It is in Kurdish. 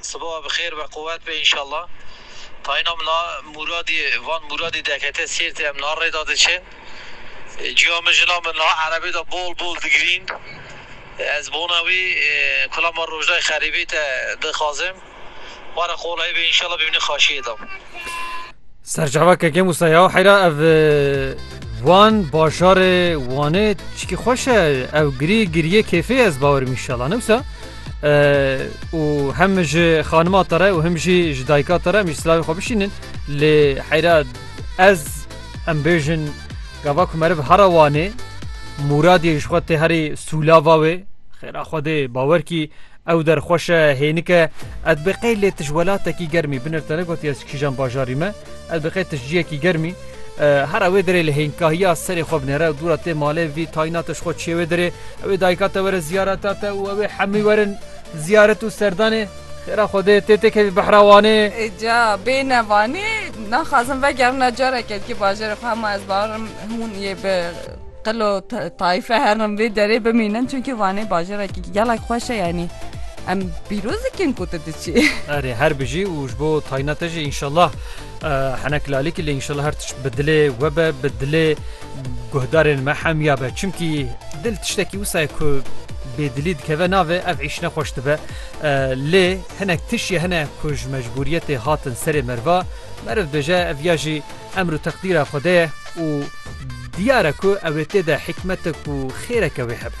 Sibawa bi xêr be quwet be înşallah. Tayîna min a Mûradî van Mûradî dekete Sêrtê em niha rêda diçin. Cuya min jina min niha erebê de bol bol digirîn. Ez bona wî kula ma Rojdayê Xerîbî te dixwazim. Were qoleyê be înşallah bimîne xaşiyê de. Serçava keke Musa ya heyra ev wan bajarê Wanê çikî xweş e ew girî giriyê kêfê ez bawerim inşallah newsa û hem ji xanima te re û him jî ji dayika te re em jî silavê xwe bişînin lê heyra ez em bêjin gava ku meriv hera Wanê Mûradiyê ji xwe tê herî sûlava wê xêra xwe dê bawer kî Ew derxweşe hênike ez bi qey lê tij welatekî germî binir te negotiye ez kîjan bajarî me ez bi qey tij ciyekî germî hera wê dirê li hênkahiya serê xwe binêre dûra tê malê vî tayna tij xwe çê wê dirê ewê dayika te were ziyareta te û ewê hemî werin ziyaret û serdanê Xêra Xwedê tê tê kevî behra wanê. Ca bêne vanê naxwazim vegerina careke dikê bajarê xwe hema ez barim hûn yê bi Qilo tayfe her dem vê derê bimînin çünkü Vanê bajarekî gelek xweş e yanî em pîroz dikin ku tu diçî. Erê her bijî û ji bo tayna te jî înşallah henek lalîkî lê înşallah her tişt bi dilê we be bi dilê guhdarên me hemiya be çimkî dil tiştekî wisa ye ku bê dilî dikeve navê ev îşine xweş dibe lê hinek tişiye hene ku ji mecbûriyetê hatin serê meriva meriv dibêje ev ya jî Emr û teqdîra Xwedê ye û diyar e ku ew ê tê de hikmetek û xêreke wê hebe.